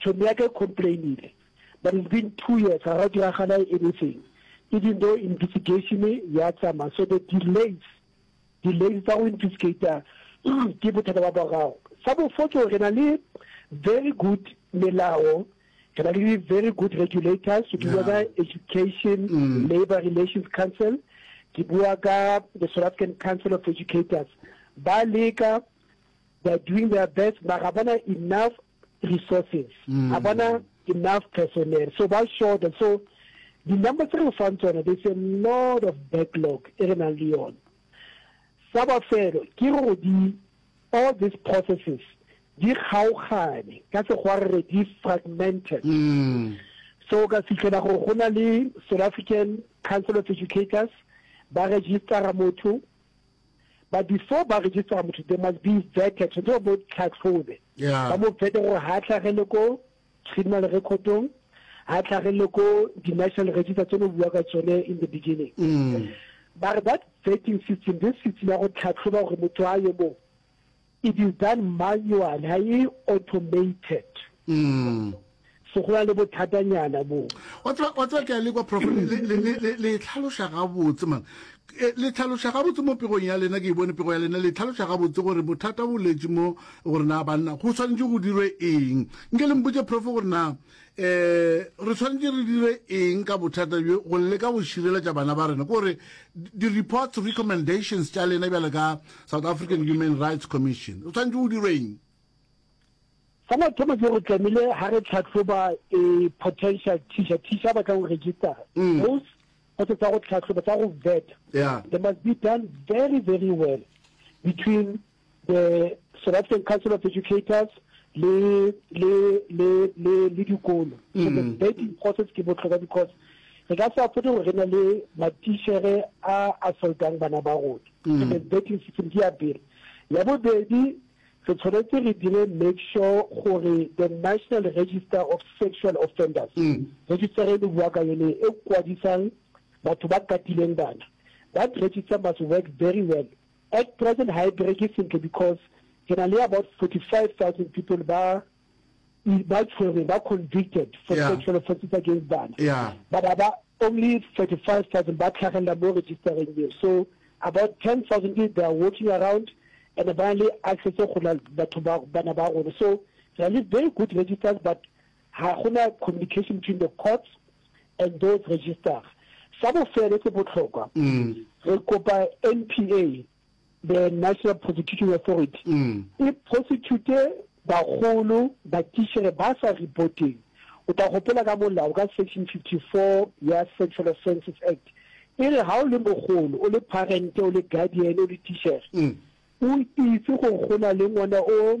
Tšhomi ya ka e complainile but it's been two years ga go diragala anything even though investigation ya tsama so the delays delays tsa go investigator ke bothata ba borago. Sa bofo ke gore re na le very good melao re na le very good regulators ke bua ka education labour relations council ke bua ka the South African Council of Educators ba leka they are doing their best mara bona enough resources mm. a bona enough personnel so ba short so the number tse re fang tsona there's a lot of backlog e re nang le yone sa bofelo ke gore di all these processes di kgaogane ka sekgwa re re di fragmented mm. so ka fitlhela gore go na le south african council of educators ba registera motho But before ba register motho, they must be vetted, so they bo tlhatlhobe. Yeah. Ba mo vete gore ha tlhagele ko criminal recordong, ha tlhagele ko di-national register tse no bua ka tsone in the beginning. Mm. But that vetting system, this system ya go tlhatlhoba gore motho a yo mo It is done manual, ha e automated. So go na le bothatanyana moo. Wa tseba, wa tseba ke a le kwa prof, le, le, le, le, le tlhaloša gabotse man. Eh, le tlhaloša gabotse mo pegong ya lena, ke e bone pego ya lena, le tlhaloša gabotse gore bothata bo letše mo gore na banna go swanetše go dirwe eng. Nke le mpotše prof gore na um re tshwanetse re dire eng ka bothata bjo go leka go šireletša bana ba rena kore di-reports recommendations tša lena bjale ka south african human rights commission re tshwanetse go dirwe eng sa mathomo ke gore tlamehile ga re tlhatlhoba e potential teacher teacher ba tla go register mm. those go tse tsa go tlhatlhoba tsa go vet they must be done very very well between the South African Council of Educators le le le le le dikolo so the mm. vetting process ke botlhokwa because re ka se afode gore re na le matišere a assaultang bana ba rona so mm. the vetting system ke ya pele ya bobedi re tshwanetse re dire make sure gore the national register of sexual offenders mm. register e le bua ka yone e kwadisang batho ba katileng bana that register must work very well At present ha e bereke sentle because re na le about 45,000 people ba ba tshwereng ba convicted for Yeah. sexual offences against bana Yeah. but ha ba only 35,000 ba tlhagelela mo registereng eo so about 10,000 is they are walking around and ba na le access go na batho ba bana ba rona so re na le very good registers but Ga go na communication between the courts and those registered. Sa bofelo se botlhokwa, re kopa NPA, the National Prosecuting Authority, e prosecute bagolo ba tichere ba sa reporteng. O tla gopola ka molao ka Section 54 ya Sexual Offences Act e re ga o le mogolo, o le parent, o le guardian, o le tichere, o itse gore go na le ngwana o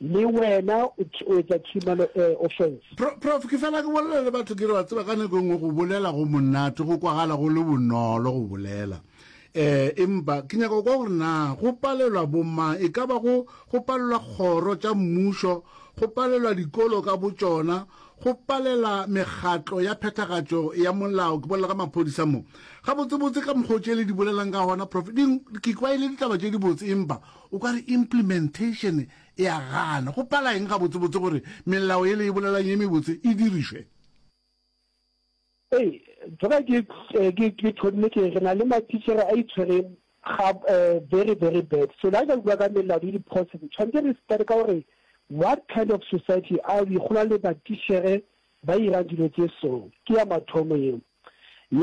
Le wena o o etsa tšhimano e, offense. Pro, prof, ke fela ke bolela le batho ke re wa tseba ka nako e nngwe go bolela go monate go kwagala go le bonolo go bolela eh empa ke nyaka kwa gore na go palelwa bo mang e ka ba go go palelwa kgoro tša mmušo go palelwa dikolo ka bo tšona go palela megatlo ya phethagatšo ya molao ke bolela ka maphodisa mo gabotsebotse ka mokgwa o tšele di bolelang ka gona prof ke kwa e le ditaba tše dibotse empa O ka re implementation e a gana. Go pala eng gabotsebotse gore melao e le e bolelang ye mebotse e dirišwe? Ee, tsena ke, ke, ke thonne ke re re na le matitšhere a itshwere ga, very, very bad. So le ha re ka bua ka melao le diphose, tshwantse re start ka gore what kind of society are we, go na le matitšhere ba irang dilo tše so. Ke ya mathomo eo. Ya.